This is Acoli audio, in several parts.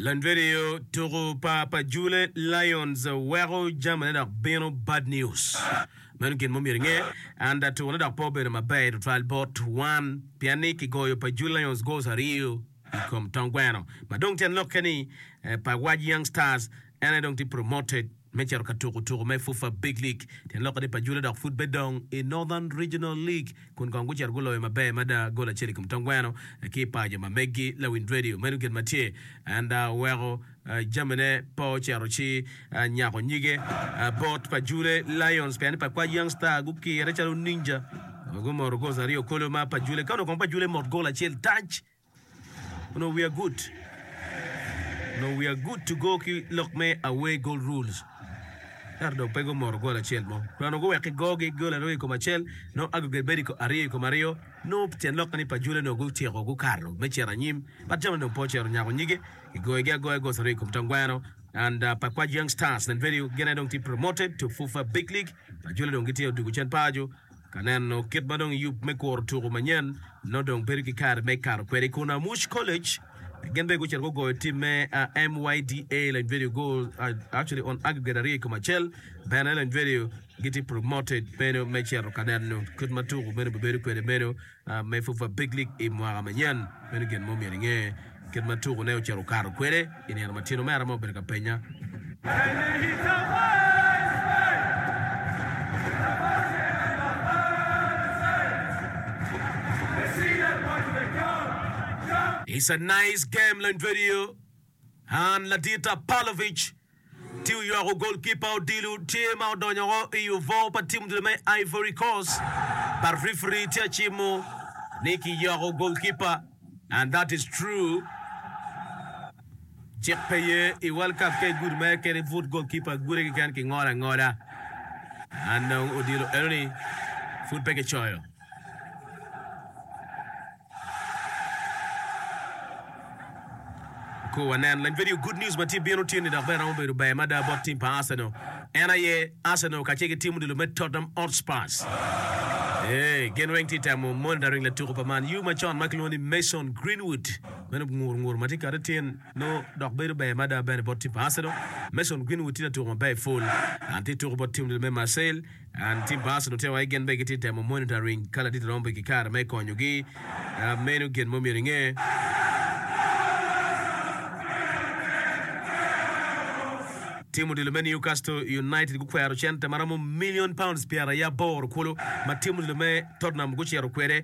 Lanvidio tuku pa pa Jule Lions weko jamine dok bino bad News. Meno gin ma omyero inge, anda tukone dok pe obedo maber tutwal bot wan pien ni kigoyo pa Jule Lions goals aryo i kom tong gweno ma dong tyen lokke ni pa Waj Young Stars en aye dong tye promoted. me cito ka tuko tuko me FUFA Big League tyen lokkene pa Jula dok pud bedong i Northern Regional League kun kong gucito guloyo maber mada gol acel i kom tong gweno ki i paco ma meggi Lawiny Radio. Meno gin ma tye and oweko jamine pe ocito ci nyako nyige bot pa Jule Lions pien ni pa Kwaj Young Star gukire calo ninja ma gumoto gols aryo kolo ma pa Jule ka onongo kong pa Jule mot gol acel tac. Onongo wiya gut. Onongo wiya good to go ki lok me away goal rules. Ento dong pe gumoto gol acel mo. Dong onongo guwek ki gogi gol aryo i kom acel, nongo aggregate bedo i aryo i kom aryo. Nongo tyen lokke ni Pajule onongo gutyeko gukato me cito anyim. But jami onongo pe ocito nyako nyige. Kigoyogi agoya goals aryo i kom Tangweno and uh, Pakwach Young Stars and Vedio gine dong tye promoted to FUFA Big League. Pajule dong gitye odugo Cen Pajo Ka neno kit ma dong yub me kuro tuku manyen nongo dong bedo ki kare me kato kwede i Kunamush College, gin bene gucito gugoyo tim me MYDA Lany Video go actually on aggregate aryo i kom acel. Bene Lany Video gitye promoted meno me cito ka neno kit ma tuku meno bibedo kwede meno. me pwod pa Big League i mwaka manyen. Meno gin ma omyero inge kit ma tukune ocito okato kwede i nino matino. Me arama obedo ka penya. Tye oywako golkipa odilo tye ma odonyo woko i obwor pa tim odilo me Ivory Coast but referee tye acimo ni ki ywako golkipa and that is true cik pe ye i world cup ka igudo mere kene ibut golkipa gude keken ki ngolo angola and odilo enoni pud pe ki coyo. Kur wanen leng vidio Good News ma tye bino otyeni dok bene romo bedo ber mada bot tim pa Arsenal. En aye Arsenal kacel ki tim odilo me Tottenham Hotspurs. Ee, gin weng tye temo monitoring latuko pa Man U macon ma kilwongo ni Mason Greenwood. Meno ngur ngur ma tye kati tyen nongo dok bedo ber mada bene bot tim pa Arsenal. Mason Greenwood tye latuko maber pol. En tye tuko bot tim odilo me Marseille. An ki Bass onongo tye wai gin bene gitye temo monitoring ka ladit romo bed ki kare me konyo gi meno gin mo myero inge. Tim odilo me Newcastle United gukwero cente maromo million pounds pyera i aboro kulu ma tim odilo me Tottenham gucito kwede.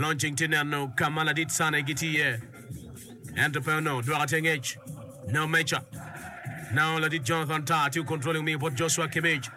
Olony cing tye neno ka ma ladit cane gitye iye, ento pe onongo dwoko te ngec. No. Meca, Nao ladit Jonathan Tah tye okontroli omiyo bot Joshua Kimmich.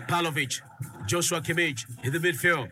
Pavlovic, Joshua Kimmich i the midfield.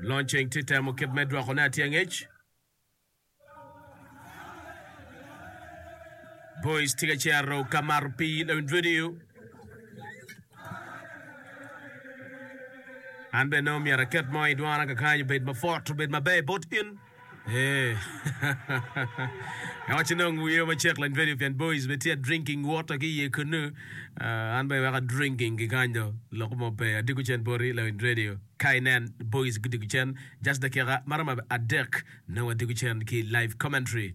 Lonceng tye temo kit me dwoko ne atye angec. Boys tye ka cero ka mato pi lawin video. An bene myero aket mo i dwana kakany obed mapot obed maber bot in. Eeh Awaco dong wiye macek lang video pien boys be tye drinking water ki iye kunu. Ah, an bene weka drinking ki kany do lok mo pe. Adiko cen poti lang in radio. Ka inen boys gudiko cen just dakika maromo adek nongo adiko cen ki live commentary.